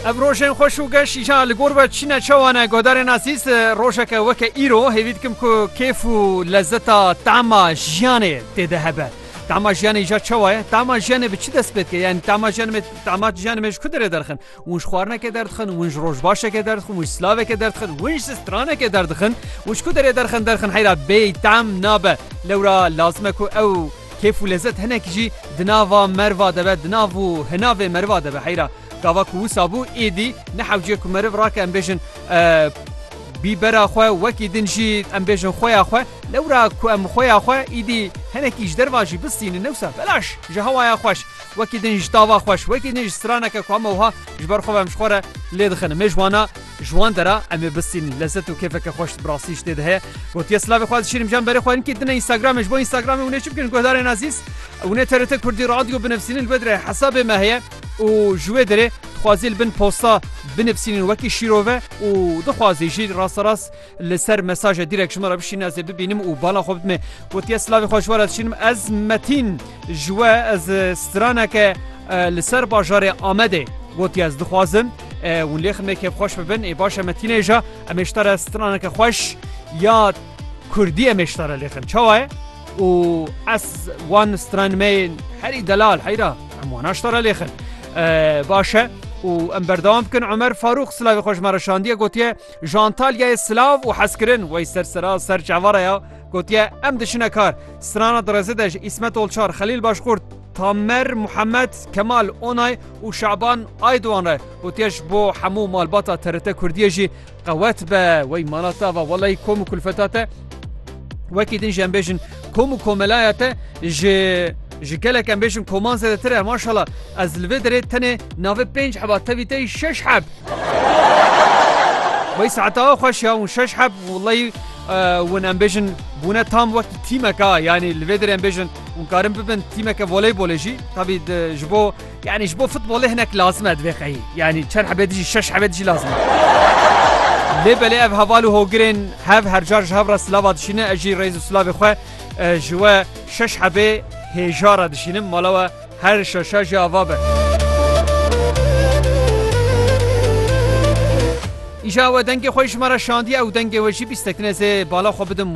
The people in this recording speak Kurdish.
Ev rojên xweş û geş îşa li gor ve çîne çawa ne godarên azîz rojeke weke îro hêvî dikim ku kêf û lezzeta tema jiyanê tê de hebe. Tema jiyanê îşa çawa ye? Tema jiyanê bi çi dest pê dike? Yani tema jiyanê tema jiyanê me ji ku derê derxin? Win ji xwarineke derdixin, win ji rojbaşeke derdixin, win ji silaveke derdixin, win ji straneke derdixin û ji ku derê derxin derxin heyra bêyî tem nabe. Lewra lazim e ku ew Kêf û lezet hinek jî di nava merva de be, di nav û hinavê meriva de be. Heyra gava ku wisa bû, êdî nehewciye ku meriv rake em bêjin bîbera xwe, wekî din jî em bêjin xweya xwe. Lewra ku em xweya xwe êdî hinekî ji derva jî bistînin newsa belaş ji hewaya xweş, wekî din ji tava xweş, wekî din ji straneke ku hema wiha ji ber xwe ve em ji xwe re lê dixin. Mêjwana Ji wan dera em ê bistînin. Lezzet û kêfeke xweş bi rastî ji tê de heye. Gotiye silavê xwe dişînim jan berê xwe linkî dine Instagramê ji bo Instagramê hûn ê çi bikin guhdarên azîz hûn ê TRT Kurdî Radyo binivîsînin li vê derê hesabê me heye û ji wê derê dixwazî li bin posta binivîsînin wekî şîrove û dixwazî jî rasterast Li ser mesaje direk ji me re bişîne ez ê bibînim û bala xwe bidime. Gotiye silavê xwe ji we re dişînim ez Metîn ji we ez straneke li ser bajarê Amedê gotiye ez dixwazim hûn lê ximê kêfxweş bibin ê baş e Metînê ja em êşta re straneke xweş ya Kurdî em êşta re lêxin çawa ye û ez wan stranmeyên herî delal heyra em wan aşta re lêxin baş e û em berdewam bikin Omer Farûq silavê xwe ji me re şandiye gotiye Ji Antalyayê silav û hezkirin wey ser sira ser çavara ya gotiye em diçine kar. Strana di rêzê de ji Îsmet Olçar, Xelîl Başkurt, Tamer Muhemed, Kemal Onay û Şaban Aydoğan re gotiye ji bo hemû malbata TRT Kurdiyê jî qewet be wey mala te va welay kom û kulfeta te wekî din jî em bêjin kom û komelaya te ji Ji gelek em bêjin koman zêdetir e maşala ez li vê derê tenê navê pênc heba tevî te yî şeş heb. Wey saeta xweş ya û şeş heb wleyî win em bêjin bûne tam wek tîmeka yanî li vê derê em bêjin û karin bibin tîmeke voleybolê jî tabî ji bo yanî ji bo futbolê hinek lazim e divê xeyî yanî çend hebê dijî şeş hebê dijî lazim e. Lê belê ev heval û hogirên hev hercar ji hev re silava dişîne ez jî rêz û silavê xwe Ez ji we şeş hebê hêja re dişînim, mala we her şeşa jî ava be. Îja we dengê xwe ji me re şandiye û dengê we jî bîstekine ez ê bala xwe bidim